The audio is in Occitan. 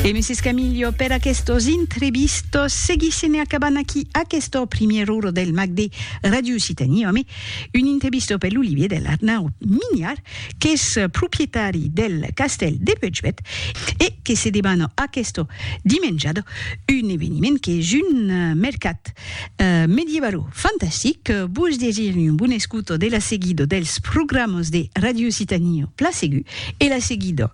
E Mrs. Camillo, per aquestos intrevistos, seguissem e acabant aquí aquesta primièra ora del mag de Radio Occitanie ame un intrevisto per l'Olivier del Arnaut Mignard, qu'es proprietari del castèl de Puigbèt e que se debana aquesta dimenjada un eveniment qu'es un mercat medievalo-fantastic. Vos desiri un bon escuta de la seguida dels programas de Radio Occitanie Pla Segur e la seguida